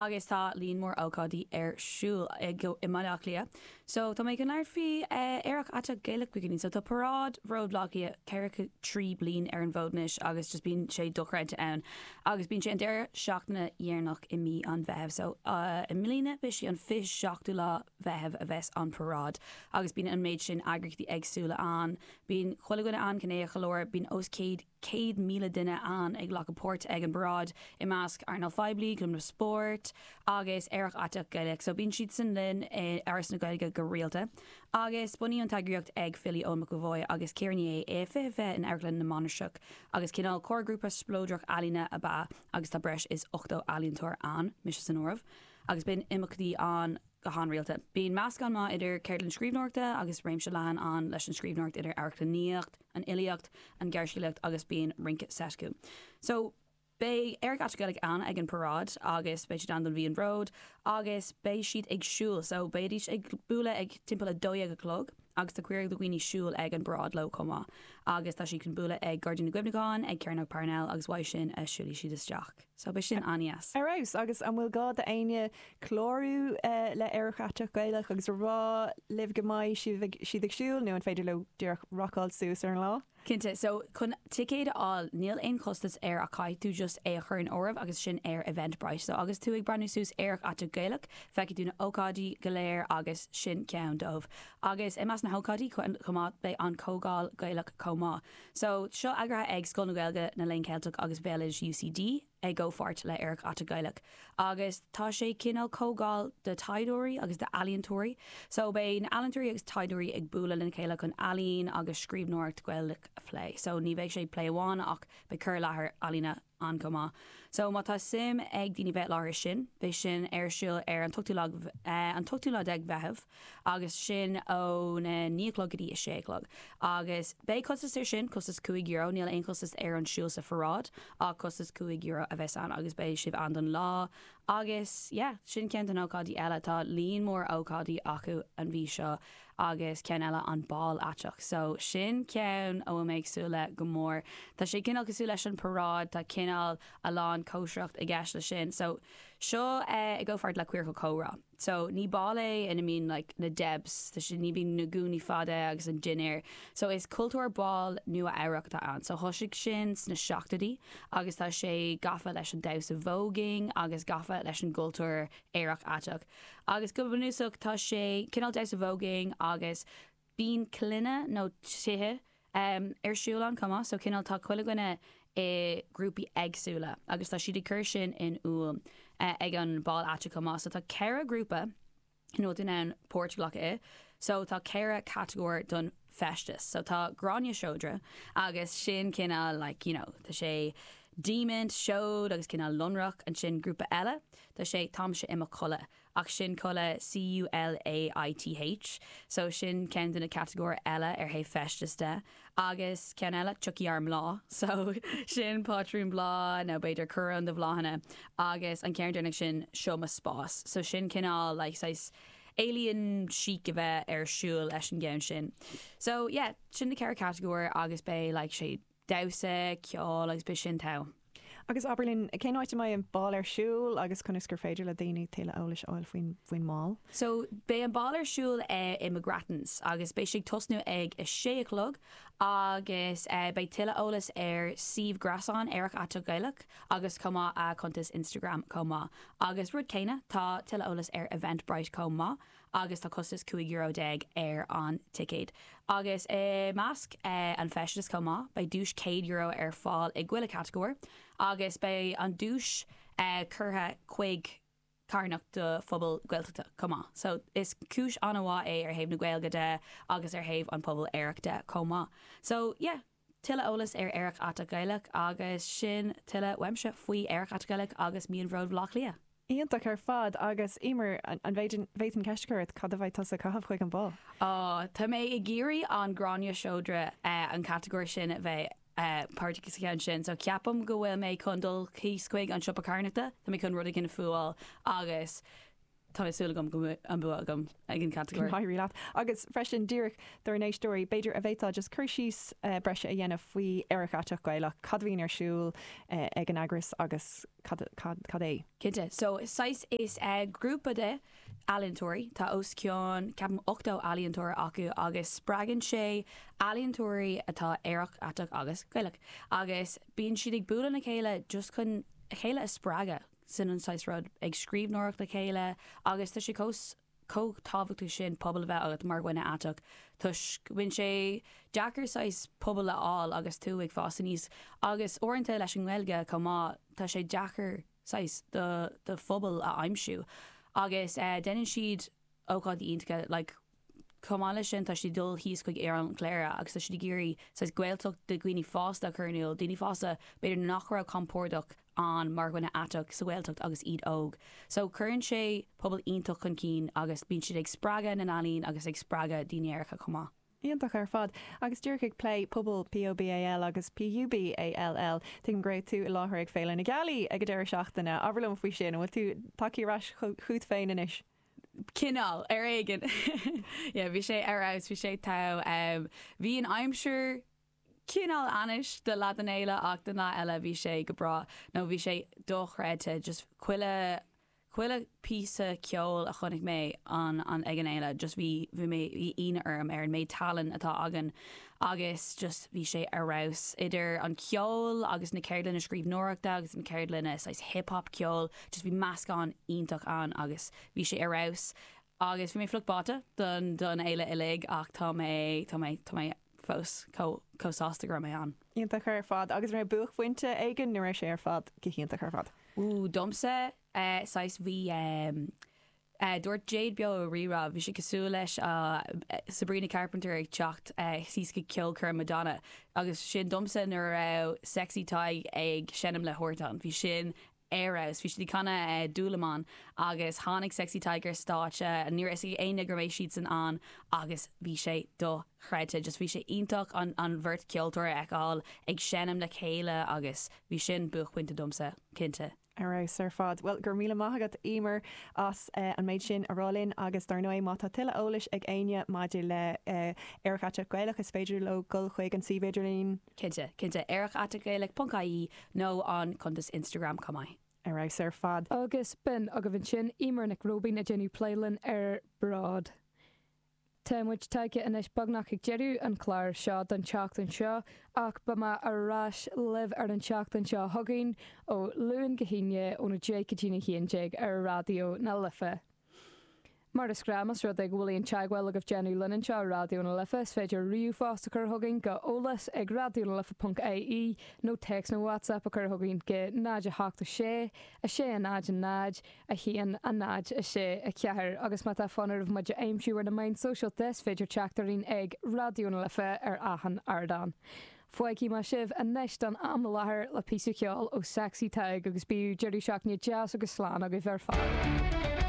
agus tá líon mór ócáidí ar siúl i mBaile Átha Cliath so tá mé ag labhairt faoi Aerach Aiteach Gaelach inniu so tá paráid Bród Bhaile Átha Cliath ceathracha trí bliain ar an bhfód anois agus just bíonn sé dochreidte ann agus bíonn sé an deireadh seachtaine dheireanach i mí an Mheithimh so i mbliana beidh sé an 27ú lá Mheithimh a bheas an paráid agus bíonn an méid sin eagraíochtaí eagsúla ann bíonn chuile dhuine ann, cineál, go leor, bíonn os céad. 100,000 duine ann ag glacadh páirt ag an bparáid, i measc earnáil phoiblí, clubanna spóirt agus Aerach Aiteach Gaelach. So bíonn siadsan linn i Áras na Gaeilge go rialta. Agus bunaíodh an t-eagraíocht ag filí, Eoin McEvoy agus Ciara Ní É i 2020 in Amharclann na Mainistreach agus cineál comharghrúpa spleodrach ealaíne ab ea agus tá breis is 80 ealaíontóir ann, mise san áireamh, agus bíonn imeachtaí ann go han-rialta. Bíonn meascán maith idir ceardlann scríbhneoireachta agus réimse leathan ann leis an scríbhneoireacht idir amharclannaíocht, an fhilíocht, an ghearrscéalaíocht agus bíonn rince seit acu. So, beidh Aerach Aiteach Gaelach ann ag an paráid agus beidh siad ann don mhí an Bhróid agus beidh siad ag siúl. So, beidís ag bualadh ag timpeall a dó dhéag a chlog agus tá cuireadh do dhaoine siúl ag an bparáid leo chomh maith agus tá siad chun bualadh ag Gairdín na gCuimhneachán, ag Cearnóg Parnell agus uaidh sin a siúlfaidh siad isteach. So beidh sin an-deas. Ar fheabhas. Agus an bhfuil gá do éinne clárú le Aerach Aiteach Gaelach agus a rá libh go mbeidh sibh ag, siad ag siúl nó an féidir leo díreach rocáil suas ar an lá? Cinnte, so chun ticéid a fháil, níl aon chostas air ach caithfidh tú just é a chur in áireamh agus sin ar Eventbrite. So agus tú ag breathnú suas Aerach Aiteach Gaelach, feicfidh tú na h-ócáidí go léir agus sin ceann dóibh. Agus i measc na h-ócáidí chomh maith, beidh an Comhdháil Gaelach chomh maith. So, seo eagraithe ag Scoil na Gaeilge, na Léinn Ceilteach agus Bhéaloideas UCD i gcomhpháirt le Aerach Aiteach Gaelach. Agus tá sé cineál comhdháil do taighdeoirí agus do ealaíontóirí. So, beidh na ealaíontóirí agus taighdeoirí ag bualadh lena chéile chun ealaín agus scríbhneoireacht Gaelach a phlé. So, ní bheidh sé plé amháin ach beidh cur i láthair ealaíne ann chomh maith. So má tá suim ag daoine bheith láthair sin, beidh sin ar siúl ar an t-ochtú lá, an t-ochtú lá déag Mheitheamh agus sin ó na naoi a chlog go dtí a sé a chlog. Agus beidh costas ar sin, costas cúig euro, níl aon chostas ar an siúl sa pharáid ach costas cúig euro a bheas ann agus beidh sibh ann don lá agus yeah, sin ceann de na ócáidí eile. Tá líon mór ócáidí acu an mhí seo. agus ceann eile an ball aiteach so sin ceann a bhfuil mé ag súil le go mór tá sé cineál cosúil leis an paráid tá cineál a lán cóisireacht i gceist le sin so seo i gcomhpháirt le Queercal Comhrá so ní ball é ina mbíonn like na Debs tá sé ní bíonn na gúnaí fada agus an dinnéar so is cultúr ball Nua Eabhrac atá ann so thoisigh sin sna seachtóidí agus tá sé gafa leis an damhsa voguing agus gafa leis an gcultúr aerach aiteach Agus go bunúsach tá sé cineál damhsa voguing agus bíonn clainne nó tithe ar siúl ann chomh maith, so cineál tá chuile dhuine i grúpaí éagsúla agus tá siad ag cur sin in iúl ag an bál aiteach chomh maith. So tá ceithre ghrúpa ina bhfuil tú in ann páirt a ghlacadh i, so tá ceithre catagóir don. feisteas. So tá Gráinne Seodra agus sin cineál like you know tá sé diamaint, seod agus cineál lonrach. Ansin grúpa eile, tá sé táimse i mo chulaith ach sin culaith C-U-L-A-I-T-H. So sin ceann de na catagóir eile ar thaobh feisteas de. Agus ceann eile, tiocfaidh ár mbláth. So sin pátrún bláth nó b'fhéidir coróin de bhláthanna. Agus an ceann deireanach sin, seo mo spás. So sin cineál like saghas. alien chic a bheith ar siúl leis an gceann sin. So, yeah, sin na ceithre catagóir agus beidh, like, sé, damhsa, ceol agus beidh sin thall. Agus abair linn, cén áit a mbeidh an bál ar siúl agus conas gur féidir le daoine tuilleadh eolais a fháil faoin, faoin mbál? So, beidh an bál ar siúl i McGrattans agus beidh sé ag tosnú ag a sé a chlog agus beidh tuilleadh eolais ar suíomh gréasáin Aerach Aiteach Gaelach. Agus chomh maith a cuntas Instagram chomh maith. Agus rud céanna tá tuilleadh eolas ar Eventbrite chomh maith agus tá costas cúig euro déag ar an ticéad. Agus i measc an feisteas chomh maith beidh duais céad euro ar fáil i chuile catagóir agus beidh an duais curtha chuig carthanacht do phobal Gaeltachta chomh maith. So is cúis an-mhaith é ar thaobh na Gaeilge de agus ar thaobh an pobal aerach de chomh maith. So yeah. Tuilleadh eolas ar Aerach Aiteach Gaelach agus sin tuilleadh uaimse faoi Aerach Aiteach Gaelach agus Mí an Bhróid Bhleá Cliath. Iontach ar fad agus Eimear an bhféadfainn ceist a chur ort, cad a bheidh tusa ag caitheamh chuig an bál? Tá mé ag iarraidh an Gráinne Seodra, an catagóir sin a bheith. páirteach sa cheann sin, so ceapaim go bhfuil mé chun dul thíos chuig an siopa carthanachta, tá mé chun rud éigin a fúáil agus tá mé súil agam go mbeidh an bua agam ag an catagóir. Éirí leat. Agus freisin, díreach dár n-éisteoirí, b'fhéidir an bhféadfá just cur síos breise a dhéanamh faoi Aerach Aiteach Gaelach, cad a bhíonn ar siúl ag an eagras agus cad, cad, cad é? Cinnte. So, saghas, is grúpa de ealaíontóirí, tá os cionn, ceapaim, ochtó ealaíontóir acu agus spreagann sé ealaíontóirí atá aerach, aiteach agus Gaelach agus bíonn siad ag bualadh le chéile just chun a chéile a spreagadh, sin an saghas rud, ag scríbhneoireacht le chéile agus tá sé chomh, chomh tábhachtach sin pobal a bheith agat mar dhuine aiteach toisc go mbíonn sé deacair saghas pobal a fháil agus tú ag fás aníos agus uaireanta leis an nGaeilge chomh maith tá sé deacair saghas do do phobal a aimsiú agus déanann siad ócáidí iontacha like chomh maith leis sin tá siad ag dul thíos chuig Oileán Chléire agus tá siad ag iarraidh saghas Gaeltacht do dhaoine fásta a chur in iúl, daoine fásta b'fhéidir nach raibh compordach. ann mar dhuine aiteach sa Ghaeltacht agus iad óg. So cuireann sé pobal iontach chun cinn agus bíonn siad ag spreagadh na n-ealaíon agus ag spreagadh daoine aeracha chomh maith. Iontach ar fad. Agus díreach ag plé pobal POBAL agus PUBALL, tuigim go raibh tú i láthair ag Féile na Gealaí ag an deireadh seachtaine. Abair liom faoi sin, an bhfuil tú tagtha ar ais chugat féin anois? Cineál, ar éigean. Yeah, bhí sé ar fheabhas, bhí sé ag tú. Bhí an aimsir. Cineál ainnis do leath den fhéile ach don leath eile bhí sé go breá nó bhí sé dochreidte just chuile, chuile phíosa ceoil a chonaic mé an, an, ag an fhéile just bhí, bhí mé, bhí ionadh orm ar an méid tallann atá againn agus just bhí sé ar fheabhas. Idir an ceol agus na ceardlanna scríbhneoireachta agus na ceardlanna saghas hip hop ceoil just bhí meascán iontach ann agus bhí sé ar fheabhas agus bhí mé fliuch báite don, don fhéile uilig ach tá mé, tá mé, tá mé. fós chomh sásta go raibh mé ann. Iontach ar fad. Agus an raibh buaicphointe éigin nó raibh sé ar fad go hiontach ar fad? Ooh, domsa, eh, saghas, bhí ehm, eh, dúirt Jade Beo i Rí-Rá, bhí sé cosúil le Sabrina Carpenter ag teacht síos chuig ceolchoirm Madonna, agus sin domsa nuair a raibh Sexy Tadhg ag seinm le Huartan, bhí sin, ar fheabhas. Bhí siad ag canadh Dúlamán agus tháinig Sexy Tadhg ar stáitse. Ní raibh a fhios ag éinne go raibh siadsan ann agus bhí sé dochreidte. Just bhí sé iontach an an bheirt ceoltóir a fheiceáil ag seinm le chéile agus bhí sin buaicphointe domsa, cinnte. Ar fheabhas ar fad. Bhuel, go raibh míle maith agat, Emer, as an méid sin a rá linn agus dar ndóigh, má tá tuilleadh eolais ag éinne maidir le Aerach Aiteach Gaelach, is féidir leo dul chuig an suíomh idirlín. Cinnte, cinnte. Aerach Aiteach Gaelach ponc ie nó an cuntas Instagram chomh maith. Ar fheabhas ar fad. Agus b'in agaibh ansin Emer Nic Róibín ag déanamh plé linn ar Bród. Tá muid tagtha anois beagnach chuig deireadh an chláir seo don tseachtain seo ach beidh mé ar ais libh ar an tseachtain seo chugainn ó Luan go hAoine óna deich go dtí a haon déag ar Raidió na Life. Mar is gnáth más rud é go bhfuil aon teagmháil agaibh le déanamh linn anseo i Raidió na Life, is féidir ríomhphost a chur chugainn go eolas ag raidiónalife.ie nó téacs nó WhatsApp a chur chugainn go 08 6 60 0 1 0 6 4 agus má tá fonn oraibh muid a aimsiú ar na meáin sóisialta is féidir teacht orainn ag Raidió na Life ar achan ardán. Fágfaidh mé sibh anois don am i láthair le píosa ceoil ó Sexy Tadhg agus bíodh deireadh seachtaine deas agus slán agaibh ar fad.